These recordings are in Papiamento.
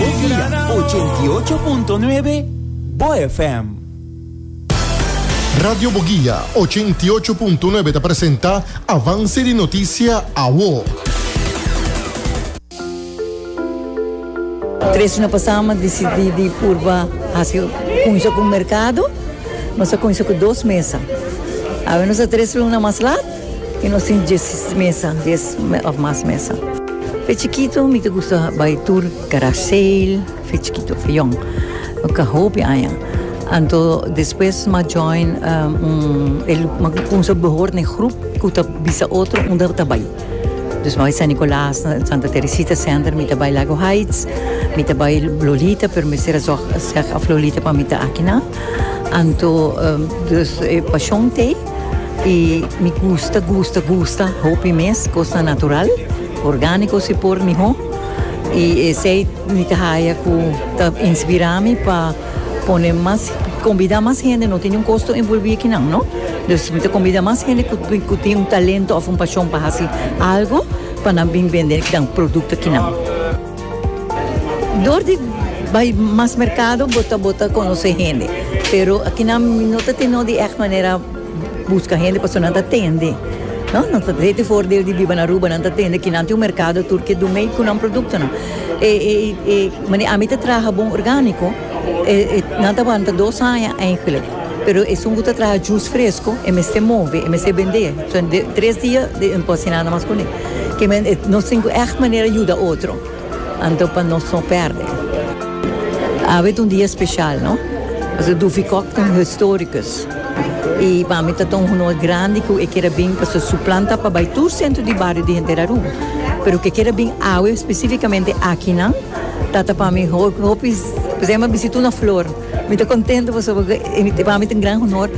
Dia 88.9 Bo FM. Radio Boguia, 88.9 ta presenta Avance di Noticia, Awo. Tres djuna pasá nos a disidí di purba hasi kunsha ku merkado. Nos a kunsha ku dos mesa. Awe nos ta tres luna mas lat. Y nos tin diesis mesa, dies of mas mesa. Fe chikito mi ta gusta bai tur garage sale, fe chikito, fe yong. No ka hopi aña. Anto despues m'a join un, m'a cuminsa behor na e groep cu ta bisa otro unda ta bai. Dus m'a bai San Nicolas, Santa Teresita Center, mi ta bai Lago Heights, mi ta bai Lolita, pero mester a zorg seg of Lolita pa mi ta aki nan. Anto, dus e Pasion Thee. y mi gusta gusta gusta hopi mes cosnan natural organico si por miho y esey mi ta haya cu ta inspira mi pa pone mas combida mas hende no tin un costo envolvi aki nan no dus mi ta combida mas hende cu tin un talento of un pasion pa haci algo pa nan been bende nan producto aki nan. Dor di bai mas merkado bo ta bo ta konosé hende, pero aki nan mi no ta tene no di ègt manera buska hende pasobra nan ta tende, no, nan ta tende for di biba na Aruba, nan ta tende aki nan tin un merkado tur ke dun mei ku nan produktonan. E e mane ami ta traha bon orgániko e e nan ta wanta dos aña eingelik, pero esun ku ta traha jus fresko e mester move, e mester bendé, so tres dia den pò siná nan mas kuné. Ke men e nos tin ku ègt manera yuda otro, anto pa nos no pèrdè. Awe ta un dia speshal, no? Pasobra Duffy Cock ta un historikus, i pa mi ta ta un honor grandi ku e keda bin, pasobra su plan ta pa bai tur sentro di bario di henter Aruba, pero ku e keda bin awe spesífikamente akinan, ta ta pa mi hopi, ku se yama bisita una flor. Mi ta kontentu pasobra e pa mi ta un gran honor,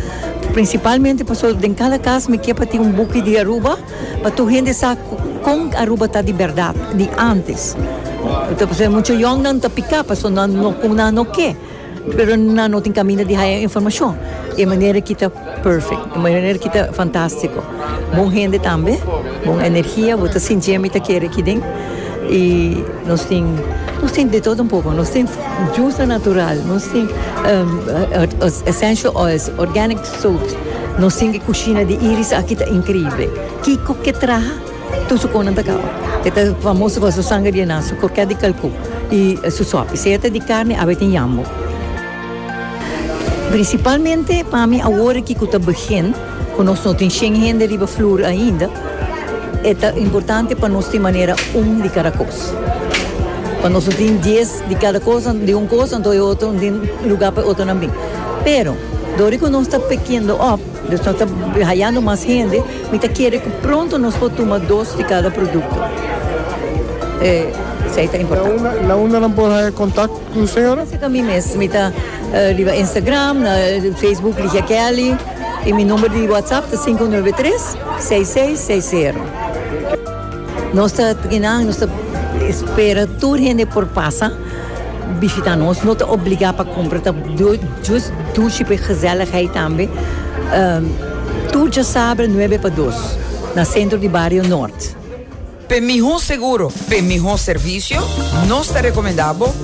prinsipalmente pasobra den kada kas mi ke pa tin un buki di Aruba, pa tur hende sa kon Aruba ta di bèrdat di ántes. Pasobra muchu yòngnan ta piká pasobra nan no kon nan no ke, pero nan no tin kaminda di haya informashon. E manera aki ta pèfèkt, e manera aki ta fantástiko. Bon hende tambe, bon energia, bo ta sinti e mi ta kere aki den. I nos tin, nos tin di todo un poko, nos tin jusa natural, nos tin essential oils, organic. Sout, Nos tin e kushina di Iris aki ta inkrible. Kiko ke traha? Tur su konan ta kaba. E ta famoso pa su sanga di enan, su krokèt di kalkú i su sòpi. Si e ta di karni a beten yambo. Prinsipalmente pa mi awor ki ku ta begin ku nos no tin shen hende riba flur ainda, e ta importante pa nos tin manera un di kada kos. Pa nos no tin dies. di cada cosa, di un cosa anto e otro, di un lugar pa e otronan bin. Pero, dor cu nos ta pekiendo op, nos ta hayando mas hende, mi ta kere cu pronto nos por tuma dos di cada producto. Esey ta importante. Na unda nan por haya contact cu u señora? Lo siento mi mes, mi ta riba Instagram, na Facebook Ligia Kelly, y mi number di WhatsApp ta sinku nuebe tres, seis seis seis zero. Nos ta trina, nos ta spera tur hende por pasa bishita nos, no ta obliga pa cumpra, ta jus dushi pa e gezelligheid tambe, tur djasabra nuebe pa dos na centro di Barrio Noord. P'e miho seguro, p'e miho servicio, nos ta recomenda bo.